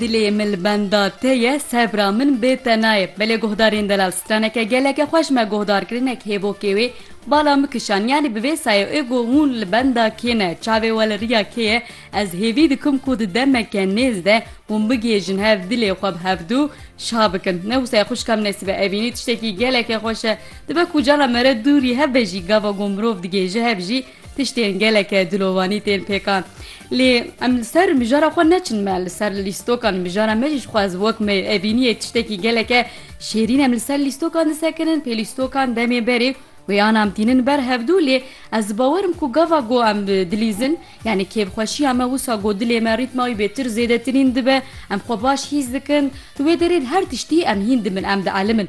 Dilê min li benda te ye, sebra min bê te nayê. Belê guhdarên delal straneke geleke xweş me guhdarkirinek hêvokê wê bala min kişand yanî bi vê sayê ê got hûn li benda kê ne çavê we li riya kê ye ez hêvî dikim ku di demeke nêz de hûn bigihêjin hev dilê xwe bi hevdu şa bikin ne wisa ye xwişka min nesîbe evînî tiştekî geleke xweş e dibe ku cala me re dûrî hebe jî gava ku mirov digihêje hev jî Tiştên geleke dilovanî tên pêkan. Lê em li ser mijara xwe neçin me li ser lîstokan mijara me jî ji xwe ez wek me evîniyê tiştekî geleke şêrîn em li ser lîstokan disekirin pê lîstokan demê berê wê anam tînin ber hevdû lê ez dibawer im ku gava ku em dilîzin yanî kêfxweşiya me wisa ku dilê me rîtma wî bê tir zêdetirîn dibe em xwe baş hîs dikin di wê derê di her tiştî em hîn dimin em dielmin.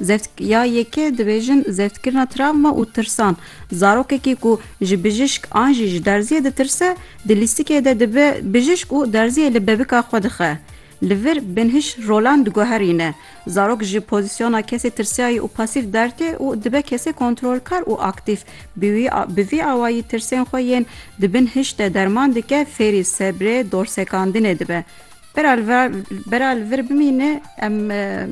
Zeft, Ya yekê dibêjin zeftkirina travma û tirsan. Zarokekî ku ji bijîşk an jî ji derziyê ditirse, di lîstikê de dibe bijîşk û derziyê li bebika xwe dixe. Li vir binhîş rolan diguherîne. Zarok ji pozîsyona kesê tirsayî û pasîf dertê û dibe kesê kontrolkar û aktîf. Bi wî bi vî awayî tirsên xwe yên di bin hişt de derman dike, fêrî sebrê, dorsekandinê dibe. Bera li vir, bera li vir bimîne em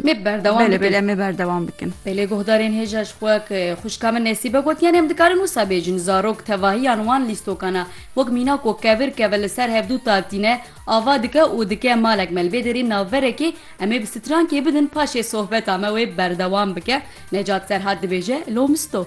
Mê berdewam belê bikin. belê em ê berdewam bikin. Belê guhdarên hêja ji xwe ke xwişka min Nesîbe gotiyane em dikarin wisa bêjin zarok tevahiyan wan lîstokana wek mîna ku kevir keve li ser hevdu ta tîne ava dike û dike malek me li vê derê navberekê em ê bi strankê bidin paşê sohbeta me wê berdewam bike Necat Serhat dibêje Lomisto.